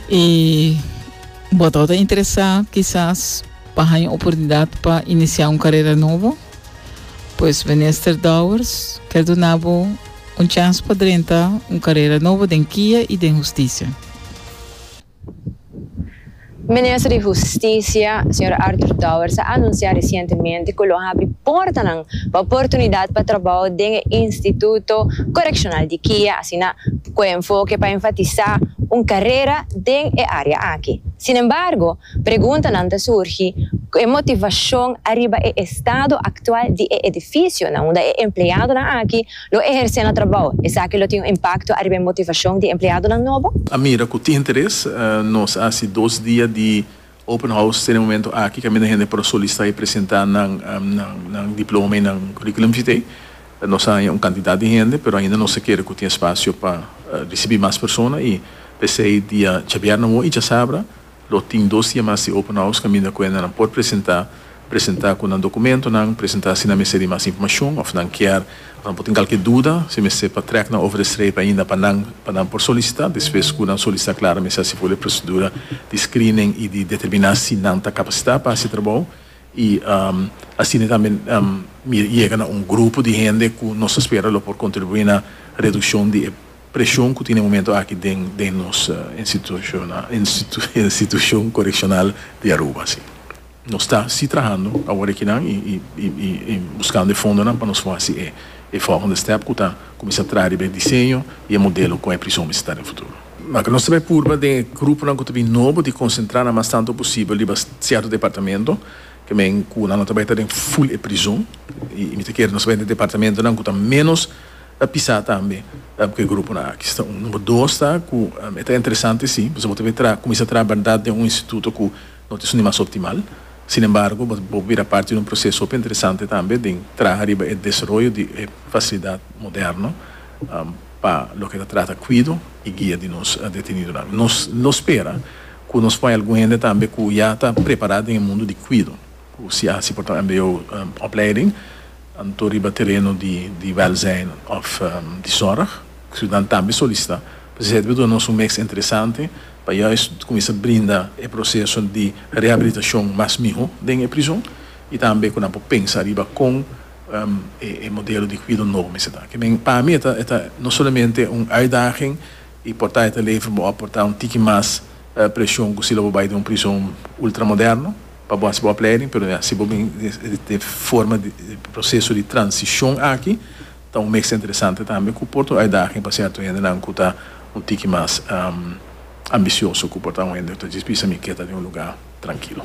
E bo ta ta interesá kisas pa haña un oportunidat pa inisiá un karera nobo? Pues Minister Dowers ker duna bo un chans pa drenta un karera nobo den Kia i den Hustisia. Minister di Husticia, señor Arthur Dowers a anuncia recientemente cu lo habri portanan pa oportunidad pa trabao den e Instituto Correccional di Kia, asina cu e enfoke pa enfatisa un carera den e area aki. Sin embargo, preguntanan ta surgi cu e motivacion ariba e estado actual di e edificio na unda e empleadonan aki Lo ehersé nan trabou. Esaki lo tin un impakto ariba e motivashon di e empleadonan nobo? A mira ku tin interes. Nos a hasi dos dia di open house ten e momento aki kaminda hende por a solistá i presentá nan diploma i nan curriculum vitae. Nos a haña un kantidat di hende pero ainda nos ta kere ku tin espasio pa risibí mas persona i p'esei dia djabièrnè awor i djasabra Lo tin dos dia mas di open house kaminda kuenda nan por presenta, presenta ku nan dokumentonan, presenta si nan mester di mas informashon òf nan kier òf nan por tin kalke duda, si mester pa trèk nan over de streep ainda pa nan pa nan por solisitá despues ku nan solisitá klar mester hasi for de prosedura di screening i di determiná si nan ta kapasitá pa hasi e trabou i asina tambe mi yega na un grupo di hende ku nos ta spera lo por kontribuí na redukshon di e Presion cu tin e momento aki den den nos institucion coreccional di Aruba. Si. Nos ta si trahando awor aki nan y buscando e fondonan pa nos por haci e e volgende step cu ta cuminsa traha riba e diseño y e modelo con e prison mester ta den futuro. Maka nos ta bay purba den e gruponan cu ta bin nobo di concentra nan mas tanto posibel riba cierto departamento, que men cu nan no ta bay ta den full e prison y mi ta kere nos ta bay den departamentonan cu ta menos Ta pisá tambe ku e gruponan aki. Esta un. Number dos ta ku e ta interesante si pasobra bo ta bira kuminsá traha bèrdat den un instituto ku no ta esun di mas optimal. Sin embargo bo por bira parti di un proseso hopi interesante tambe den traha riba e desaroyo di e fasilidat moderno pa loke ta trata kuido i guia di nos detenidonan. Nos lo spera ku nos por hay algun hende tambe ku ya ta prepará den e mundu di kuido. Ku si asi por ta mbo opleiding anto riba tereno di wèlzijn òf di sòrg. Ciudan tambe solisitá Presidente pa duna nos un meks interesante pa juis kuminsá brinda e proseso di rehabilitashon mas miho den e prizon i tambe ku nan por pensa riba kon e modelo di kuido nobo mester ta. Ke men pa mi e ta e ta no solamente un uitdaging i por ta e ta lever bo òf por ta un tiki mas preshon ku si lo bo bai den un prizon ultramoderno. Pa bo hasi bo opleiding, pero ya si bo bin den forma di proseso di transishon aki, ta un mester interesante tambe ku por ta un uitdaging pa sierto hendenan ku ta un tiki mas ambisioso, ku por ta un hende ku ta djis bisa mi ke ta den un lugá trankilo.